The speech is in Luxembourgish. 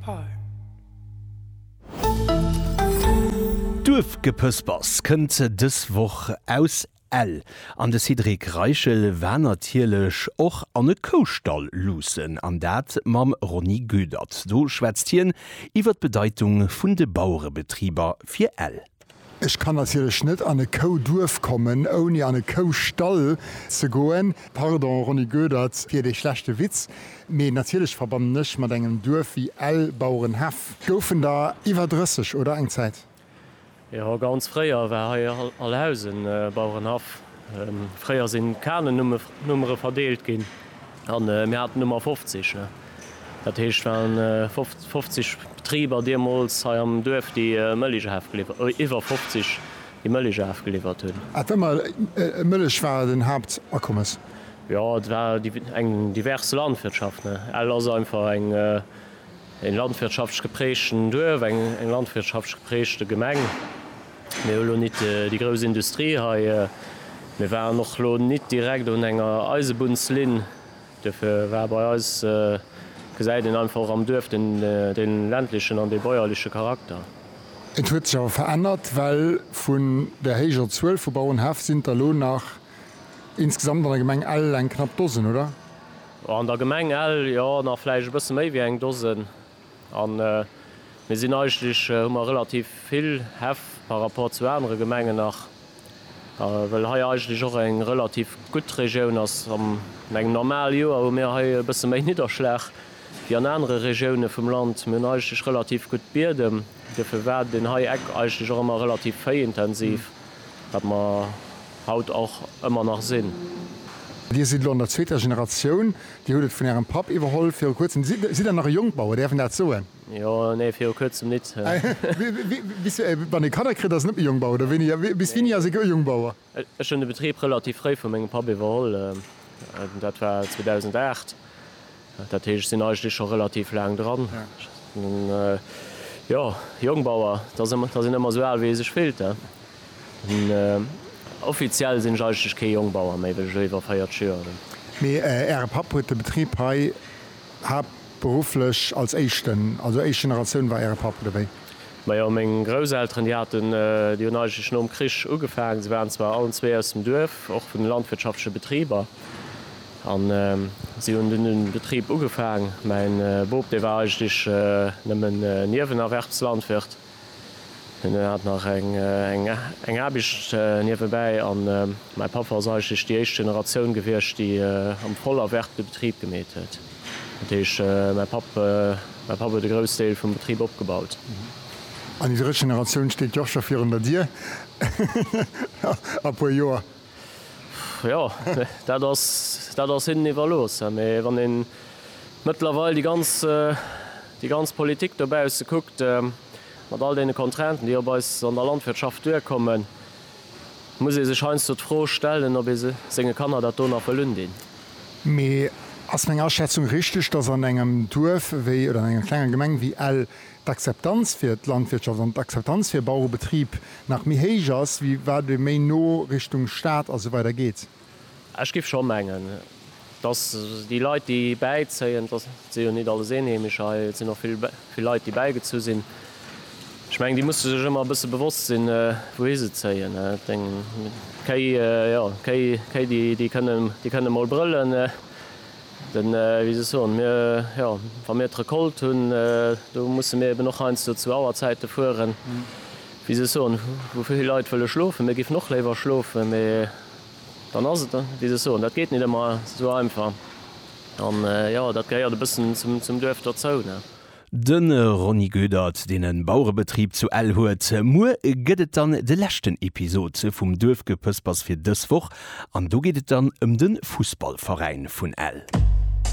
Palm. Duerfgepëspers kënnt dës Woch aus Ell an de Cédric Reichel war natierlech och an e Koustall luussen an dat mam Ronny Goedert. Do schwätzt hien iwwer d'Bedeitung vun de Bauerebetriber fir Ell. Ech kann natierlech net an e Kouduerf kommen, ouni an e Koustall ze goen. Pardon, Ronny Goedert, fir dee schlechte Witz, mee natierlech verbannen ech mat engem Duerf wéi Ell, Bauerenhaff. Goufen der iwwer 30, oder? Eng Zäit? Jo, ganz fréier war hei Alhausen, Bauerenhaff. Fréier sinn Kanennummere verdeelt ginn. An mir haten ëmmer 50, ne? Dat heescht, et waren 50 Betriber deemools hei am Duerf, déi Mëllech afgeliwwert, iwwer 50, déi Mëllech afgeliwwert hunn. Ass ëmmer d'Mëllech war den Haaptakommes? Jo, et war eng divers Landwirtschaft, ne? Ell ass einfach eng landwirtschaftlech geprägten Duerf, eng landwirtschaftlech geprägte Gemeng. Mir hu lo nit déi grouss Industrie hei. Mir waren och lo nit direkt un enger Eisebunnslinn. Duerfir war bei eis, gesäit een einfach och am Duerf, dee ländlechen an dee bäuerleche Charakter. Et huet sech awer verännert, well vun där héijer Zuel vu Bauerenhäff sinn der lo nach insgesamt an der Gemeng Ell eng knapp Dosen, oder? An der Gemeng Ell, jo, nach vläicht e bësse méi wéi eng Dosen. An mir sinn eigentlech, hu mer relativ vill Häff par rapport zu anere Gemengen nach, well hei eigentlech och eng relativ gutt Regioun ass. An engem normale Joer hu mir hei e bësse méi Nidderschlag wéi an anere Regioune vum Land. Mir hunn eigentlech relativ gutt Biedem, duerfir war deen hei Eck eigentlech och ëmmer relativ véiintensiv. Wat mer haut och ëmmer nach sinn. Dir sidd elo an der zweeter Generatioun. Dir hutt et vun ärem Papp iwwerholl viru kuerzem. Sidd Der nach e Jongbauer, däerf een dat soen? Jo, nee, viru kuerzem nit. Bis wann ee Kanner kritt, ass een net méi Jongbauer, oder wéini? Bis wéini ass ee gou Jongbauer? Ech hunn de Betrib relativ fréi vu mengem Papp iwwerholl, dat war 2008. Dat heescht, ech sinn eigentlech scho relativ laang dran. Jo, Jongbauer, da sinn ëmmer esou al, wéi ee sech fillt. Offiziell sinn ech eigentlech kee Jongbauer méi, well ech elo iwwer 40 Joer hunn. Mee Äre Papp huet de Betrib hei haaptberufflech als éischten, also éischt Generatioun war Äre Papp, oder wéi? Majo, meng Grousselteren, déi haten, déi hunn eigentlech nom Krich ugefaangen. Se waren zwar allen zwee aus dem Duerf, och vun de landwirtschaftleche Betriber. An si hunn dunn den Betrib ugefaang. Mäin Bop, dee war eigentlech nëmmen Niewenerwerbslandwirt. Hien hat nach eng Aarbecht niewebäi. An mäi Papa ass eigentlech déi éischt Generatioun gewiescht, déi am Vollerwerb de Betrib gemeet huet. Dat heescht, mäi Papp, mäi Papp huet e Groussdeel vum Betrib opgebaut. An déi drëtt Generatioun steet jo och scho virun der Dier a puer Joer. Jo, dat ass, dat ass hinnen iwwerlooss. Mee wann ee mëttlerweil déi ganz, déi ganz Politik dobausse kuckt, mat all deene Contrainten, déi op eis an der Landwirtschaft duerkommen, muss ee sech heiansdo d'Fro stellen, ob ee senge Kanner dat do nach wëll undinn. Mee ass meng Aschätzung richteg, dass an engem Duerf wéi, oder an enger klenger Gemeng wéi Ell, d'Akzeptanz fir d'Landwirtschaft an d'Akzeptanz fir Bauerebetrib nach méi héich ass, wéi wat ee méi no Richtung Stad a sou weider geet. Ech géif scho mengen, dass déi Leit, déi bäizéien, et si jo nit alles Eenheemescher hei, et sinn och vill Leit, déi bäigezu sinn, ech mengen, déi musse sech ëmmer e bësse bewosst sinn, wouhi se zéien. Et eng Kéi, jo, Kéi, Kéi, déi kënnen, déi kënnen emol brëllen, Den, wéi se soen, mir, jo, wa mir d'Recolte hunn, do musse mir eben och heiansdo zu Auerzäite fueren, wéi se soen, wou vill Leit wëlle schlofen. Mir géifen och léiwer schlofen, mä dann ass et, wéi se soen, dat geet nit ëmmer esou einfach. An, jo, dat gehéiert e bëssen zum Duerf dozou. De Ronny Goedert, deen e Bauerebetrib zu Ell huet. Muer gëtt et dann de leschten Episod vum Duerfgepëspers fir dës Woch an do geet et dann ëm de Fussballveräin vun Ell.